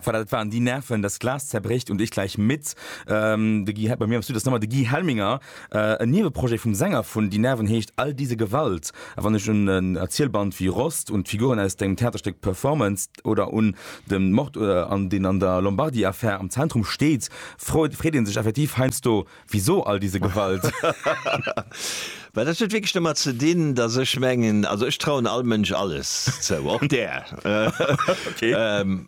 Voilà, dat waren déi Nerven, Das Glas zerbricht und ich gleich mit. Ähm, de Guy, bei mir am Studio ass nëmmer de Guy Helminger. Äh, en Nieweprojet vum Sänger vun Die Nerven heescht All diese Gewalt. A wann ech un en Erzielband wéi Rost, un d'Figuren aus dengem Theaterstéck Performanced oder un de Mord, deen an der Lombardy-Affär am Zentrum steet, freet, freet ee sech effektiv heiansdo, Wisou all diese Gewalt? Well dat huet wierklech domat ze dinn, datt ech mengen, also ech trauen all Mënsch alles zou, och där.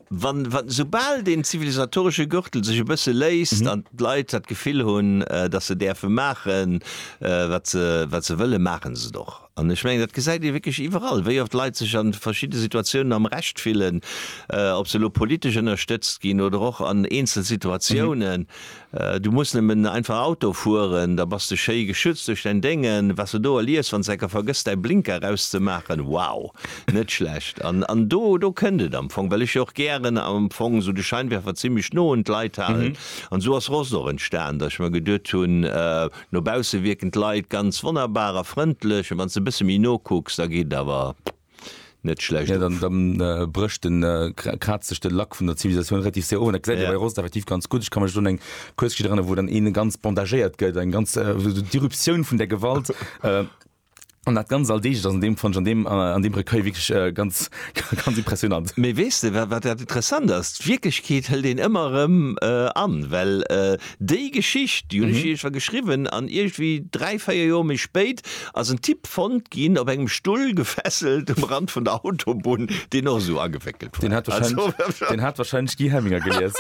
Wann, wann, soubal deen zivilisatoresche Gürtel sech e bësse léisst an d'Leit dat Gefill hunn, datt se däerfe maachen, wat se, wat se wëllen, maachen se et och. An ech mengen, dat gesäit ee wierklech iwwerall, wéi oft Leit sech a verschidde Situatiounen am Recht fillen, ob se elo politesch ënnerstëtzt ginn oder och an eenzel Situatiounen. Du muss nemmen einfach Auto fueren, da bass de schéi geschützt duerch däin Déngen. Wat de do erliefs wanns de enker vergëss däi Blinker eraus ze maachen, wow! Net schlecht. An an do do kënnt et am Fong, well ech jo och gären am Fong esou de Scheinwerfer zimmlech no un d'Leit halen. An esou ass Rost och entstan, datt ech mer geduet hunn, no bausse wierken d'Leit ganz wonnerbar a frëndlech, a wanns de e bësse méi no kucks, da geet et awer. net schlecht ja, dann, dann äh, brëcht den äh, kratzt sech de Lack vun der Zivilisation relativ sehr ohne ja. bei Rost effektiv ganz gut ich kann schon eng Kurschi dran wo dann een ganz bandagéiert gëtt eng ganz äh, Diruption vun der Gewalt äh, an dat ganz all deeg an dem von an dem äh, an dem Recueil wirklich äh, ganz ganz impressionant méi wees de wat dat interessant ass Wirklechkeet hëll den ëmmer ëm äh, an well äh, Déi Geschicht, déi hunn ech iergendwa geschriwwen an iergendwéi dräi, véier Joer méi spéit ass en Typ fonnt ginn, op engem Stull gefesselt um Rand vun der Autobunn, deen och esou agewéckelt war. Deen hat warscheinlech Guy Hemminger gelies.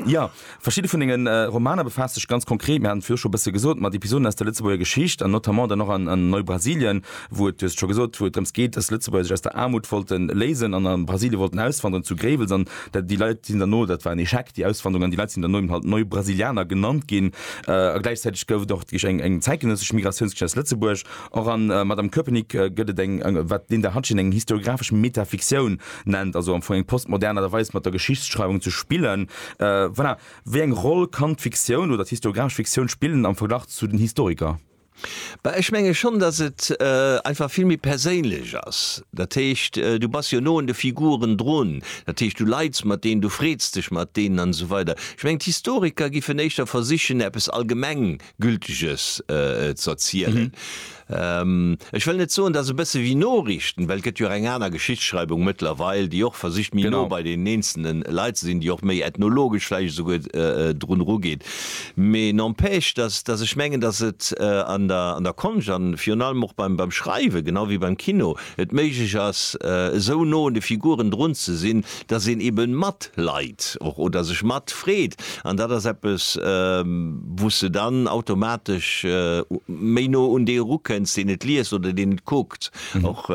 Jo, verschidde vun denge Romaner befaasse sech ganz konkret, mir haten et viru scho e bësse gesot, mat Episoden aus der Lëtzebuerger Geschicht an notamment dann och an Neu-Brasilien, wou et, du hues et scho gesot, wou et drëms geet, dass d'Lëtzebuerger sech aus der Aarmut wollte léisen an a Brasilien wollten auswandern, zu Gréiwels an Déi Leit sinn derno, dat war en Echec, déi Auswanderung, an déi Leit sinn derno eben halt Neue Brasilianer genannt ginn. A gläichzäiteg gouf et och deeg eng, eng zäitgenëssesch Migratiounsgeschicht aus Lëtzebuerg. Och an Madame Köpenick gëtt et eng, eng, wat d'Linda Hatgen eng historiographesch Metafiktioun nennt, also am Fong eng postmodern Aart a Weis, mat der Geschichtsschreiwung ze spillen. Voilà. Wéi eng Roll kann d'Fiktioun oder d'historiographesch Fiktioun spillen am Verglach zu den Historiker? Bah, ech menge schonn, datt et einfach vill méi perséinlech ass. Dat heescht, du bass jo no un de Figuren drun. Dat heescht, du leits mat deenen, du freets dech mat deenen an esou weider. Ech mengen, d'Historiker giffen éischter versichen, eppes Allgemenggülteges z'erzielen. Ech wëll net soen, datt e bësse wéi Noriichten, well et gëtt jo och eng aner Geschichtsschreiwung mëttlerweil, déi och versicht, méi no bei deenen eenzelne Leit ze sinn, déi och méi ethnologesch vläicht esouguer drun erugeet. Mee n'empêche, dass, dass ech mengen, dass et an der, an der Konscht a virun allem och beim, beim Schreiwen, genau wéi beim Kino, et méiglech ass, esou no un de Figuren drun ze sinn, dass een eebe matleit och oder sech matfreet. An dat ass eppes, wou s de dann automatesch méi no un dee erukenns, deen et liest oder deen et kuckt och.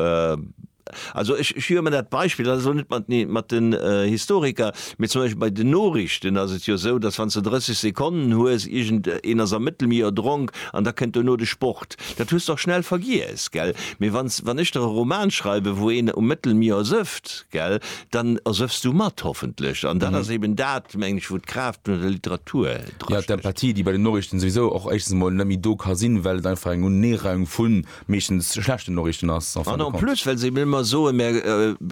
Also ech hir ëmmer dat Beispill, dat ass elo net mat nee mat den Historiker, mee zum Beispill bei den Noriichten ass et jo esou, datt wann s de 30 Sekonnen hues, iergend een ass am Mëttelmier erdronk an da kënnt dono de Sport. Dat hues de och schnell vergiess, gell? Mee wann s wann ech der e Roman schreiwen, wou een um Mëttelmier ersëfft, gell, dann ersëffs du mat, hoffentlech. An dat ass eben dat, mengen ech, wou d'Kraaft vun der Literatur dra. Jo, d'Empathie, déi bei den Noriichten souwisou och éischtens emol net méi do ka sinn, well et einfach eng Uneereihung vun. meeschtens schlechten Noriichten ass. An en plus, well se ëmmer soen, mä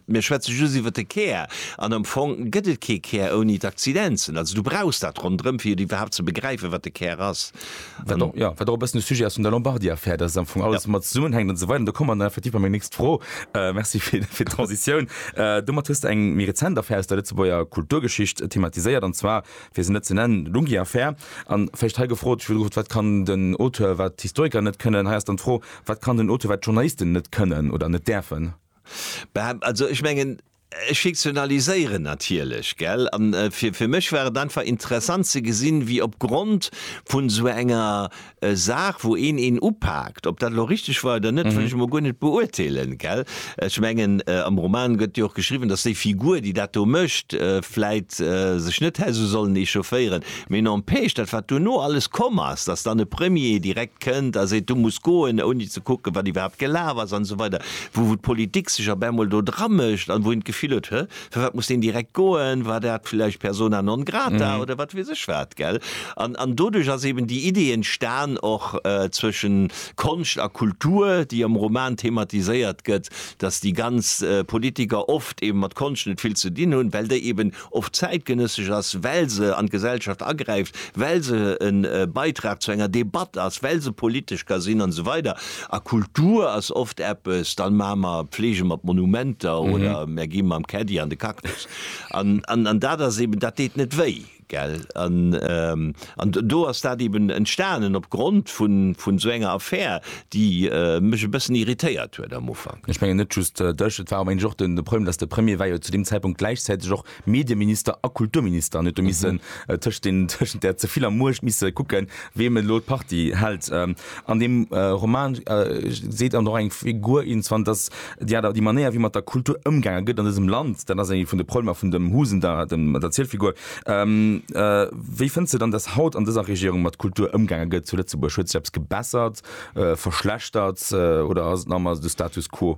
mir schwätze just iwwert de Kär, an am Fong gëtt et kee Kär ouni d'Accidenzen. Also du brauchs dat ronderëm, fir et iwwerhaapt ze begräifen, wat de Kär ass. Wat och, jo, wat och e bëssen de Sujet ass vun der Lombardy-Affär, dass et am Fong alles domat zesummenhänkt an esou weider. An do komme mer dann effektiv bei meng nächst Fro, merci fir d'Transitioun, domat hues de eng méi rezent Affär aus der Lëtzebuerger Kulturgeschicht thematiséiert, an zwar fir se net ze nennen, Lungi Affaire. An vläicht hei gefrot, ech hu gefrot, wat kann den Auteur, wat d'Historiker net kënnen? Hei ass dann d'Fro, wat kann den Auteur, wat d'Journalisten net kënnen oder net däerfen? Bäh, also ech mengen, ech fiktionaliséieren natierlech, gell? An fir mech war et einfach interessant ze gesinn, wéi opgrond vun esou enger e Saach wou een een upaakt. Ob dat elo richteg war oder net, wëll ech emol guer net beurteelen, gell. Ech mengen am Roman gëtt jo och geschriwwen, datt déi Figur déi dat do mécht vläit sech net hätt esou sollen echaufféieren, mee n'empêche dat wat duerno alles komm ass, datt dann e Premier direkt kënnt a seet, du muss goen, ouni ze kucken wat iwwerhaapt gelaf ass an esou weider, wou d'Politik sech op ämol do dramécht an wou een d'Gefill huet, hä? Fir wat muss deen direkt goen? War dat vläicht persona non grata oder wat weess ech wat, gell? An, an doduerch ass eben déi Idee entstan och zwëschen Konscht a Kultur, déi am Roman thematiséiert gëtt, dass déi ganz Politiker oft eben mat Konscht net vill ze dinn hunn, well déi eben oft zäitgenëssesch ass, well se an d'Gesellschaft agräift, well se e Beitrag zu enger Debatt ass, well se politesch ka sinn an esou weider. A Kultur ass oft eppes, dann maache mer Pflege mat Monumenter oder mer gi mam Caddy an de Cactus. An, an, an dat ass eeben, dat deet net wéi, gell. An, an do ass dat eeben entstanen op Grond vun, vun esou enger Affär, déi mech e bëssen irritéiert huet am Ufank. Ech mengen net just dech, et war och, mengen ech, och de Problem, datt de Premier war jo zu deem Zäitpunkt gläichzäiteg och Medieminister a Kulturminister, an huet do missen tëscht den, tëschent där ze viller Muecht misse kucken, weem et elo d'Parti hält. An deem Roman seet dann och eng Figur, iergendwann, datt déi Aart, déi Manéier, wéi mat der Kultur ëmgaange gëtt an dësem Land, dat ass ee vun de Problemer vun dem Husen da, dem, der Zielfigur. Wéi fënns de dann, datt haut an dëser Regierung mat Kultur ëmgaange gëtt zu Lëtzebuerg? Huet sech eppes gebessert, verschlechtert oder ass et nach ëmmer de Status quo?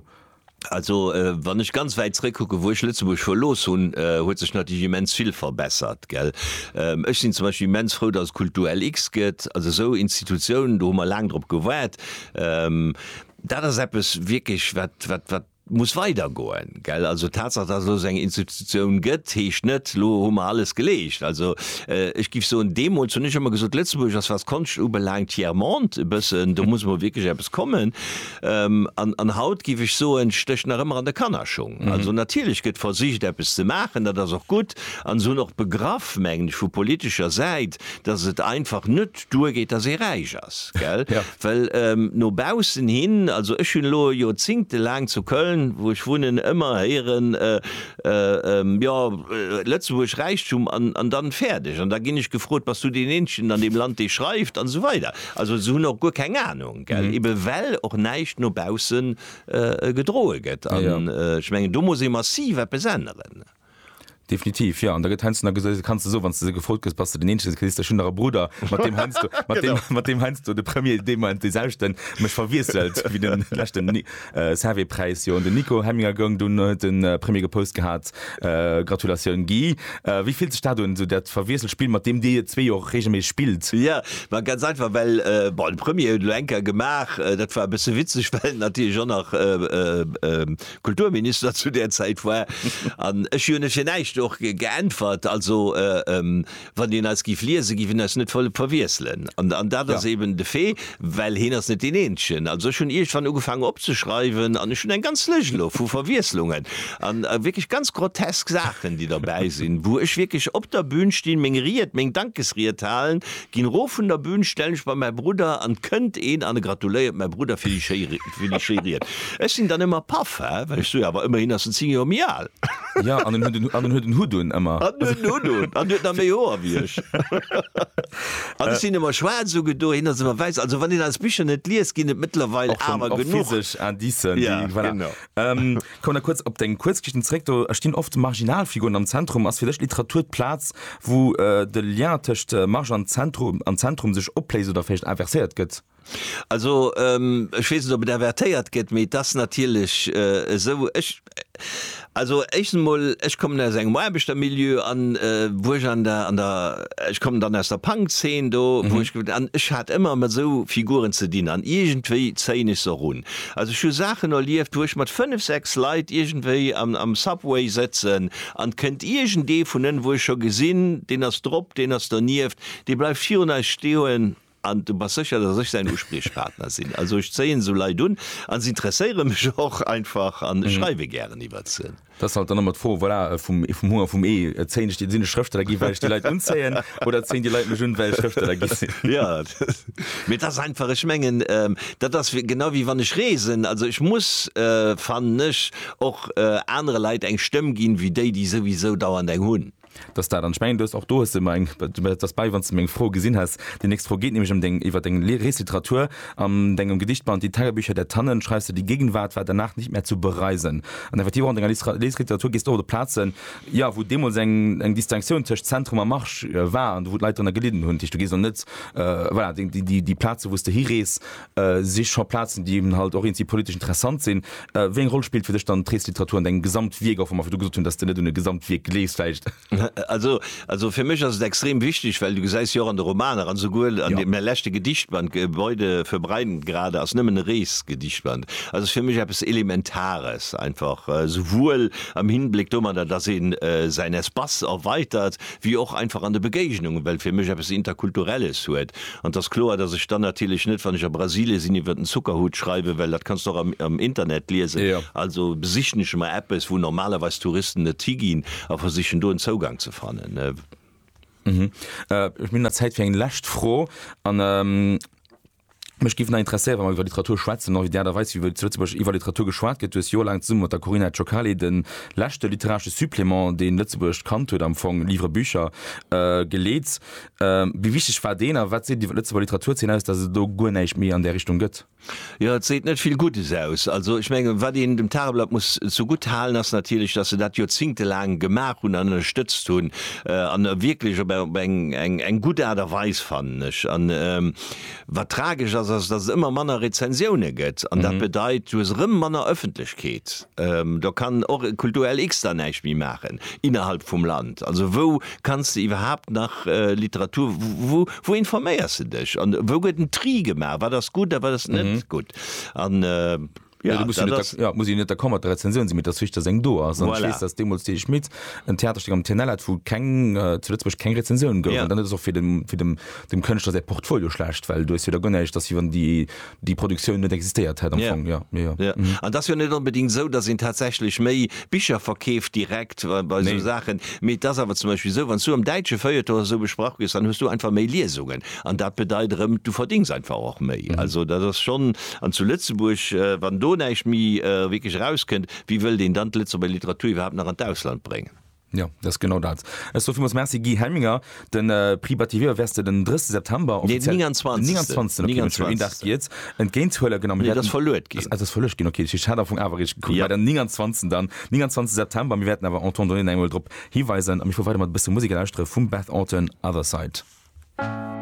Also wann ech ganz wäit zréckkucken, wou ech Lëtzebuerg verlooss hunn, huet sech natierlech immens vill verbessert, gell. Ech sinn zum Beispill immens frou, datt et Kulturlx gëtt. Also esou Institutiounen, do hu mer laang drop gewaart. Dat ass eppes wierklech wat, wat, wat muss weidergoen, gell. Also d'Tatsaach, datt et elo esou eng Institutioun gëtt, heescht net, elo hu mer alles geleescht. Also ech géif soen, deemools hunn ech ëmmer gesot, Lëtzebuerg ass, wat d'Konscht ubelaangt, tiers monde e bëssen. Do muss elo wierklech eppes kommen. An haut, giff ech soen, stécht nach ëmmer an der Kannerschung. Also natierlech gëtt versicht eppes ze maachen, dat ass och gutt, an se hunn och begraff, mengen ech, vu politescher Säit, datt et einfach net duer geet, datt ee räich ass, gell? Well no baussen hin, also ech hunn elo Joerzingte laang zu Köln, wou ech wunnen, ëmmer héieren, jo, Lëtzebuerg, Räichtum an dann fäerdeg. An da ginn ech gefrot, bass du deen eenzegen an deem Land, dee schreift? An esou weider. Also se hunn och guer keng Anung. gell, ebe well och näischt no baussen gedroe gëtt an ech mengen do muss ee massiv eppes änneren. Definitiv, jo. An da gëtt heiansdo nach gesot, kanns de sou, wann s de esou gefrot gëss, bass de den Eenzegen, kriss de schonn nach e Brudder, mat deem heiansdo, mat deem heiansdo de Premier deemoolt dee selwechten mech verwiesselt wéi de leschten. Servais Präis jo un den Nico Hemminger goung, dunn huet de Premier gepost gehat, Gratulatioun Guy. Wéi fillt sech dat un, esou dat verwiesselt Spill, mat deem Dir zwee jo och reegelméisseg spillt? Jo, ma ganz einfach, well bon de Premier huet elo eng Kéier gemaach, dat war e bësse witzeg, well en natierlech och nach Kulturminister zu där Zäit war an ech hunn fir näischt och geäntwert. Also Wann een eis giff liesen, giff een eis net volle verwiesselen. An dat ass eben de Fait, well heen ass net deen Eenzegen. Also ech hunn iergendwann ugefaangen opzeschreiwen an ech hunn eng ganz Lëscht elo vu Verwiesslungen an wierklech ganz grotesk Saachen, déi derbäi sinn, wou ech wierklech op der Bün stinn, meng Ried, meng Dankesried halen, ginn erof vun der Bün, stellen ech bei mäi Brudder an et kënnt een an e gratuléiert mäi Brudder fir déi schéi Ried. Ech sinn dann ëmmer paff, well ech soe jo, awer ëmmerhin ass en 10 Joer méi al. Ja, an en huet en, an en huet en Hutt un, ëmmer. An huet en Hutt un, an huet nach méi Hoer wéi ech. An ech sinn ëmmer schwaarz ugedo, hien ass ëmmer wäiss. Also wann een eis Bicher net liest, ginn et mëttlerweil awer genuch. Och schonn, och physesch Indicen, déi, voilà. Ja, genau. Kommen nach kuerz op deng Kuerzgeschichten zeréck. Do stinn oft Marginalfiguren am Zentrum. Ass fir dech Literatur d'Plaz, wou de Lien tëscht Marge an Zentrum, an Zentrum sech opléist oder vläicht inverséiert gëtt? Also, ech weess net, ob et avertéiert gëtt, mee et ass natierlech esou, ech, also éischtens emol, ech kommen aus engem Aarbechtermilieu an, wou ech an der, an der, ech kommen dann aus der Punk-Zeen do, wou ech, an ech hat ëmmer mat esou Figuren ze dinn an iergendwéi zéien ech se och un. Also ech hu Saachen erlieft, wou ech mat fënnef, sechs Leit iergendwéi am Subway sëtzen an et kënnt iergendee vun ënnen, wou ech scho gesinn, deen ass drop, deen ass donieft, dee bleift virun eis stoen, An du bass sécher, dass ech säin Uspriechpartner sinn? Also ech zéien esou Leit un a s'interesséiere mech och einfach an ech schreiwe gären iwwert se. Dat ass halt dann ëmmer d'Fro, voilà, vum Humm a vum Ee. Zéien ech déi, sinn ech Schrëfsteller ginn, well ech déi Leit unzéien, oder zéien déi Leit mech un, well ech Schrëfsteller gi sinn? Jo, mee et ass einfach, ech mengen, dat ass genau wéi wann ech reesen. Also ech muss, fannen ech, och anere Leit eng Stëmm ginn, wéi déi, déi souwisou dauernd eng hunn. dass dat an ech mengen, du hues och do hues de mer eng dat ass bäi, wann s de meng Fro gesinn häss. Déi nächst Fro geet nämlech ëm deng iwwer deng Li Reesliteratur. An dengem Gedichtband Die Tagebücher der Tannen schreifs de, Die Gegenwart war danach nicht mehr zu bereisen. An effektiv och an denger Listra Leesliteratur gees de och op Plazen, jo, wou deemools eng eng Distinctioun tëscht Zentrum a Marsch war an do wou d'Leit drënner gelidden hunn. Dat heescht, du gees elo net, voilà, déi déi déi Plaze wou s de hirees, si scho Plazen, déi eben halt och eenzi politesch interessant sinn. Wéi eng Roll spillt fir dech dann d'Reesliteratur an dengem Gesamtwierk, och wa mer virdu gesot hunn, dass de net un e Gesamtwierk gleefs vläicht? Also, also fir mech ass et extrem wichteg, well du gesäis jo och an de Romaner an esouguer an deem leschte Gedichtband Gebäude für Breiden grade ass nëmmen e Reesgedichtband, also ass fir mech eppes Elementares einfach, esouwuel am Hinbléck domadder, dass ee säin Espace erweitert, wéi och einfach an de Begéignungen, well fir mech eppes Interkulturelles huet. An et ass kloer, datt ech dann natierlech net, wann ech a Brasilie sinn, iwwer den Zuckerhut schreiwen, well dat kanns de och am Internet liesen. Also besichen ech emmer eppes, wou normalerweis Touristen net higinn a versichen do en Zougang ze fannen. Ech hunn nach Zäit fir eng lescht Fro. Mech géif nach interesséieren, wa mer iwwer Literatur schwätzen, och iwwer déi Aart a Weis, wéi zu Lëtzebuerg iwwer Literatur geschwat gëtt. Du hues joerlaang zesumme mat der Corinna Ciocali de leschte literaresche Supplément, deen Lëtzebuerg kannt huet, am Fong Livre Bücher, geleet. Wéi wichteg war deen a wat seet et iwwer d'Lëtzebuerger Literaturzeen aus, datt et elo guer näischt méi an där Richtung gëtt? Jo, et seet net vill Guddes aus. Also ech mengen, wat een dem Tageblatt muss zegutt halen, ass natierlech, datt se dat joerzéngtelaang gemaach hunn an ënnerstëtzt hunn, an wierklech op eng gutt Aart a Weis, fannen ech. Wat tragesch ass, ass, dass et ëmmer manner Rezensioune gëtt an dat bedeit, du hues erëm manner Ëffentlechkeet. Do kann och e Kulturell X dann näischt méi maachen innerhalb vum Land. Also wou kanns de iwwerhaapt nach Literatur, wou informéiers de dech an wou gëtt en Tri gemaach, wat ass gutt a wat ass net gutt? Ja, du muss net der, ja, muss net der Komma der Rezension sinn, mit der Zwichter seng do ass voilà. Schließt, dass demmols de Schmidt en Theaterstück am TNL hat, wo keng äh, zu Lützburg keng Rezension gouf yeah. dann ass och fir dem, fir dem, dem Kënschtler säi Portfolio schlecht, well du jo der gënnecht, dass iwwer die, die Produktioun net existéiert hätt am yeah. Fong. Ja, ja. ja. Mhm. An das jo net unbedingt so, dass en tatsächlich méi Bicher verkeeft direkt äh, bei nee. so Sachen. Mit das awer zum Beispiel so, wann du am deitsche Feuilleton so besprach gist, dann hust du einfach méi Liesungen. An dat bedeit rëm, du verdings einfach och méi. Mhm. Also dat ass schon An zu Lëtzebuerg, wann do näischt méi wierklech erauskënnt, wéi wëllt een dann d'Lëtzebuerger Literatur iwwerhaapt nach an d'Ausland bréngen? Jo, dat ass genau dat. Ech soe villmools Merci Guy Helminger. De Prix Bativier wäers de den 30 September, offiziell. Nee, den 29. Den 29. Okay, Mënsch, een Dag Giez, entgéint huelen. Genau, mir wäerten. Nee, dat ass verluet ginn. Dat ass verluecht ginn, okay. Ech hat am Fong awer riicht gekuckt. Jo. Mä den 29. dann, 29. September. Mir wäerten awer en temps donné nach eemol drop hiweisen. A mir fuere weider mat e bësse Musek a lauschtere vum Beth Orton, Other Side.